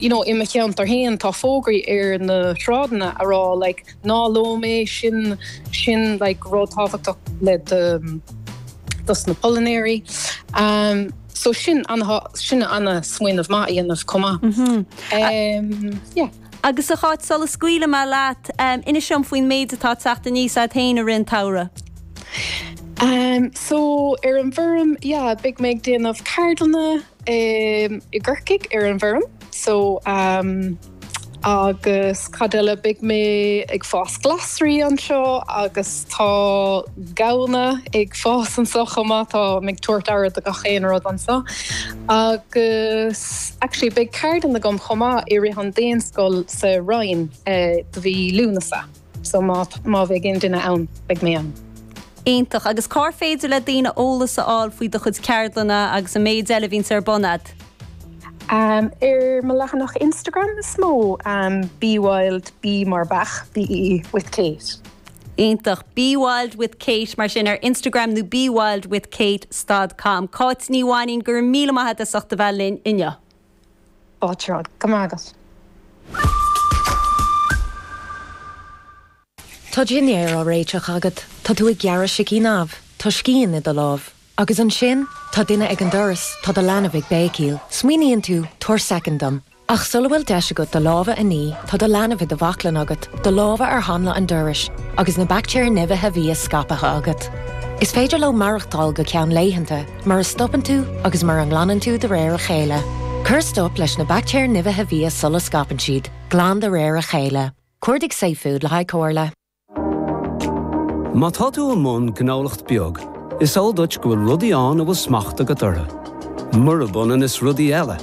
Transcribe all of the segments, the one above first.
You know, i mo cheantar féin tá fógraí ar na sráideanna a rá like ná lom mé, sin, sin like rud tábhachtach le do, dos na polainéirí. Umm, so sin ana, sin ana smaoineamh maith a dhéanamh chomh maith. Umm, yeah. Agus a Cháit, sula scaoileadh mé leat, umm, inis dom faoin méid atá ag teacht aníos a'd féin i rith an tsamhraidh. Umm, so ar an bhfoirm, yeah, beidh mé ag déanamh ceardlanna, i gCorcaigh ar an bhfoirm so agus cad eile beidh mé ag fás glasraí anseo agus tá gamhna ag fás anso chomh maith tá mé ag tabhairt aire do gach aon rud anso agus actually beidh ceardlann agam chomh maith i rith an daonscoil sa Rinn i mí Lúnasa. So má bheidh aon duine ann, beidh mé ann. Iontach. Agus cár féidir le daoine eolas a fháil faoi do chuid ceardlanna agus an méid eile a bhíonns ar bun agat? Ar mo leathanach Instagram is mó, Be Wild, Bí mar Beach, BE, with Kate. Iontach. Be Wild with Kate mar sin ar Instagram nó BeWildWithKate stad com. Cáit Ní Mhainnín, go raibh míle maith agat as ucht a bheith linn inniu. Go raibh maith agat. Tá dinnéar á réiteach agat, tá tú ag gearradh sicín amh, tá scian i do lámh. Agus ansin, tá duine ag an doras, tá do leanbh ag béicíl. Smaoiníonn tú, 'Tabhair soicind dom. Ach sula bhfuil deis agat do lámha a ní, tá do leanbh i do bhaclainn agat, do lámha ar hanla an dorais, agus na baictéir nimhithe bhia scaipthe agat. Is féidir leo maireachtáil go ceann laethanta. mura stopann tú agus mura nglanann tú de réir a chéile. Cuir stop leis na baictéir nimhithe bhia sula scaipeann siad, glan de réir a chéile. Cuardaigh safefood le haghaidh comhairle. Má tá tú i mbun gnólacht beag, is eol duit go bhfuil rudaí ann a bhfuil smacht agat orthu. Murab ionann is rudaí eile.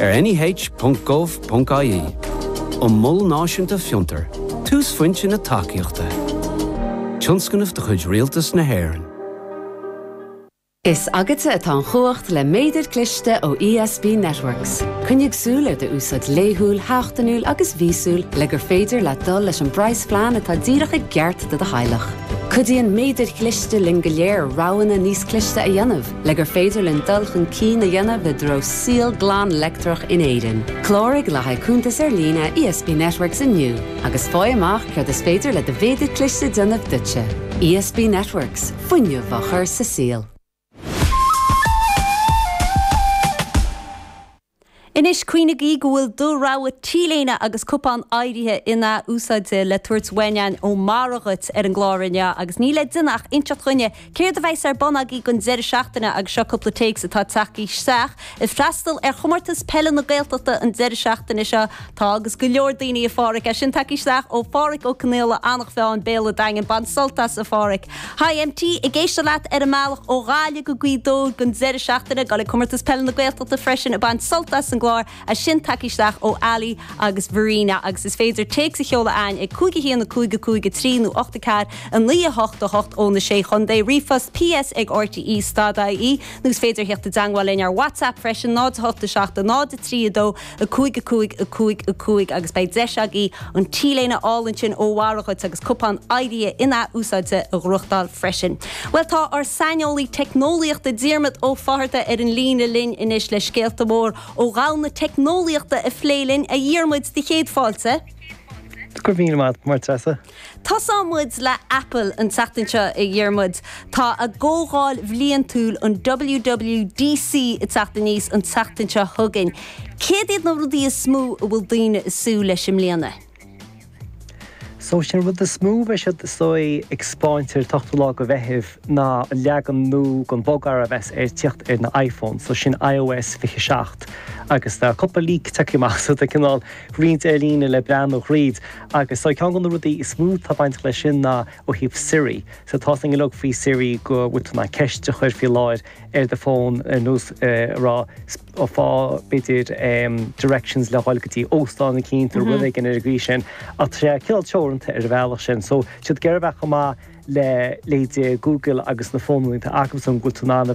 ar neh.gov.ie Mol Náisiúnta Fiontar, túsphointe na tacaíochta, tionscnamh de chuid Rialtas na hÉireann. Is agatsa atá an chumhacht le méadair cliste ó ESB Networks. Coinnigh súil ar d'úsáid laethúil, sheachtainiúil agus mhíosúil le gur féidir leat dul leis an bpraghasphlean atá díreach i gceart do do theaghlach. Cuidíonn méadair chliste linn go léir roghanna níos cliste a dhéanamh, Le gur féidir linn dul chun cinn a dhéanamh i dtreo saol glan leictreach in Éirinn, cláraigh le haghaidh cuntas ar líne ESB Networks inniu agus faigh amach céard is féidir le do mhéadar cliste déanamh duitse. ESB Networks, fuinneamh á chur sa saol. Anois, cuimhnigí go bhfuil do rogha T-léine agus cupán RTÉ in-athúsáidte le tabhairt uainn againn ó Meadhra dhuit ar an gclár inniu agus níl le déanamh ach inseacht dhúinne céard a bheidhs ar bun agaí gon deireadh seachtaine agus seo cupla téacs atá tagtha isteach ag freastal ar Chomórtas Peile na Gaeltachta an deireadh seachtaine seo. Tá agus go leor daoine, a Pháraic, é sin tagtha isteach ó Pháraic Ó Conaola, Anach Mheáin, Béal a' Daingin, bain sult as, a Pháraic. Hi MT, ag éisteacht leat ar an mbealach ó Ghaillimh go Gaoth Dobhair don deireadh seachtaine, ag gabháil ag Comórtas Peile na Gaeltachta freisin ag baint sult as an gclár é sin tagtha isteach ó Ali agus Verena agus is féidir téacs a sheoladh againn ag 51553 nó 84988 ó na Sé Chontae, ríomhphost, PS ag rte, stad IE, nó is féidir a thíocht i dteangmháil linn ar WhatsApp freisin, 0 8 7 0 3 2. 5, 5, 5, 5, agus beidh deis agaí an T-léine álainn sin ó Mháire dhuit agus cupán RTÉ in-athúsáidte a ghnóthachtáil freisin. Bhuel, tá ár saineolaí teicneolaíochta Diarmaid Ó Fátharta ar an líne linn anois le scéalta mór ó dhomhan na teicneolaíochta a phlé linn. A Dhiarmaid, do chéad fáilte! Go raibh míle maith agat, Máire Treasa. Tosóimid le Apple an tseachtain seo, a Dhiarmuid. Tá a gcomhdháil bhliantúil, an WWDC, ag teacht aníos an tseachtain seo chugainn. Céard iad na rudaí is mó a bhfuil daoine ag súil leis i mbliana? So is é an rud is mó a bheidh siad is dóigh ag 'speáint ar an t-ochtú lá de Mheitheamh ná an leagan nua den bhogearra a bheas ag tíocht ar na iPhones, so sin ios 27. Agus tá cúpla leak tagtha amach, so tá cineál roinnt ar líne le breathnú thríd. Agus ceann de na rudaí is mó atá bainteach leis sin ná ó thaobh Siri. So tá a fhios ag go leor faoi Siri go bhfuil tú in ann ceist a chur faoi láthair ar do fón ar nós a rá faigh b'fhéidir directions le dhul go dtí óstán eicínt nó rud éigin ar an gcaoi sin. Ach tá sé cineál teoranta ar an bhealach sin. So tá siad ag iarraidh a bheith chomh maith le, leithéidí, Google agus na fónanna atá acusan go bhfuil tú in ann a bheith.